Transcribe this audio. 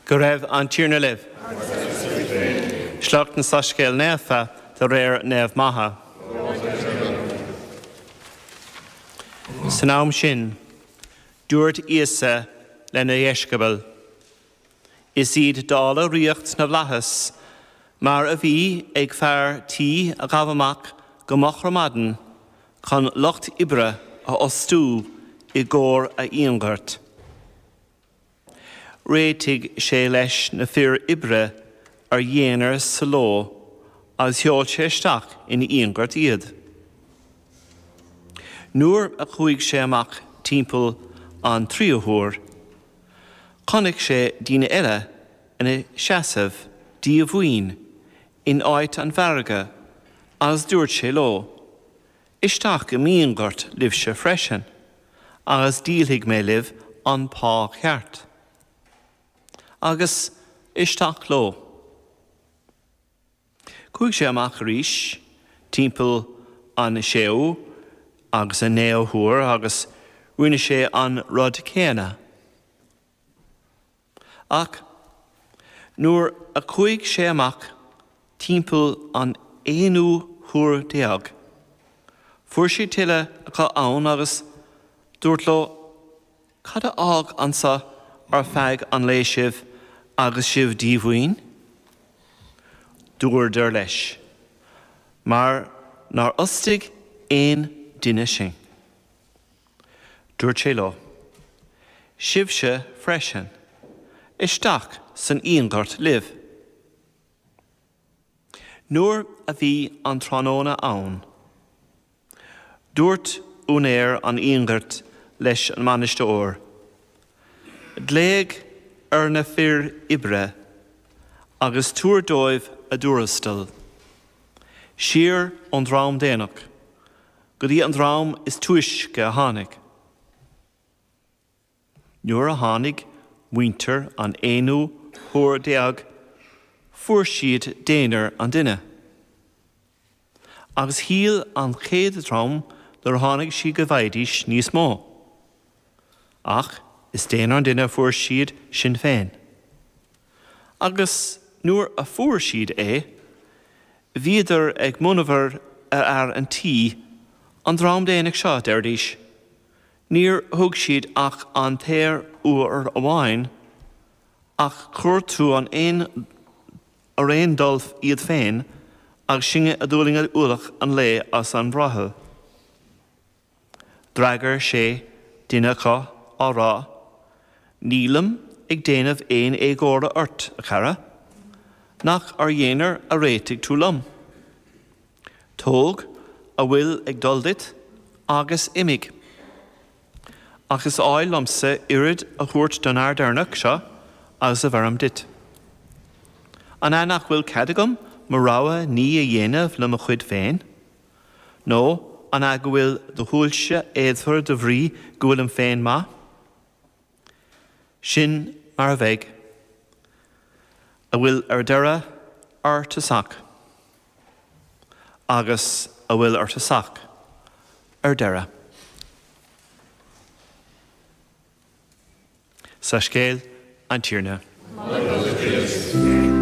Go raibh an Tiarna libh. Agus le do spiorad féin. Sliocht as an Soiscéal Naofa de réir Naomh Matha. Glóir duit, a Thiarna. San am sin, dúirt Íosa lena dheisceabail, Is iad dála ríocht na bhflaitheas mar a bhí ag fear tí a ghabh amach go moch ar maidin chun lucht oibre a fhostú i gcomhair a fhíonghoirt. Réitigh sé leis na fir oibre ar dhéanar sa ló agus sheol sé isteach ina fhíonghort iad. Nuair a chuaigh sé amach timpeall an tríú huair, chonaic sé daoine eile ina seasamh díomhaoin in áit an mhargaidh, agus dúirt sé leo, Isteach i m'fhíonghort libhse freisin, agus díolfaidh mé libh an pá ceart. Agus isteach leo. Chuaigh sé amach arís timpeall an séú agus an naoú huair agus rinne sé an rud céanna. Ach nuair a chuaigh sé amach timpeall an aonú huair déag, fuair sé tuilleadh acu ann agus dúirt leo, Cad a fhág anso ar feadh an lae sibh agus sibh díomhaoin? Dúradar leis, Mar nár fhostaigh aon duine sinn. Dúirt sé leo, Sibhse freisin, isteach san fhíonghort libh. Nuair a bhí an tráthnóna ann, dúirt úinéir an fhíonghoirt leis an mbainisteoir, Glaoigh ar na fir oibre agus tabhair dóibh a dtuarastal, siar ón dream déanach. go dtí an dream is túisce a tháinig. Nuair a tháinig muintir an aonú huair déag fuair siad déanar an duine. Agus shíl an chéad dream nuair a tháinig siad go bhfaighidís níos mó. ach is déanar an duine a fuair siad sin féin. Agus nuair a fuair siad é, bhíodar ag monabhar ar fhear an tí, an dream déanach seo, deiridís, níor thug siad ach an t-aon uair amháin, ach chuir tú an ar aon dul iad féin agus sinne a d'fhulaing ualach an lae is an bhrothall. D'fhreagair sé duine acu á rá, Nílim ag déanamh aon éagóra ort, a chara. Nach ar dhéanar a réitigh tú liom? Tóg a bhfuil ag dul duit agus imigh. Ach is áil liomsa oiread a thabhairt don fhear deireanach seo agus a bheirim duit. An ea nach bhfuil cead agam mo rogha ní a dhéanamh le mo chuid féin? Nó an ea go bhfuil do shúilse éadmhar de bhrí go bhfuilim féin maith? Sin mar a bheidh. A bhfuil ar deireadh ar tosach. Agus a bhfuil ar tosach ar deireadh. Soiscéal an Tiarna. Moladh duit, a Chríost.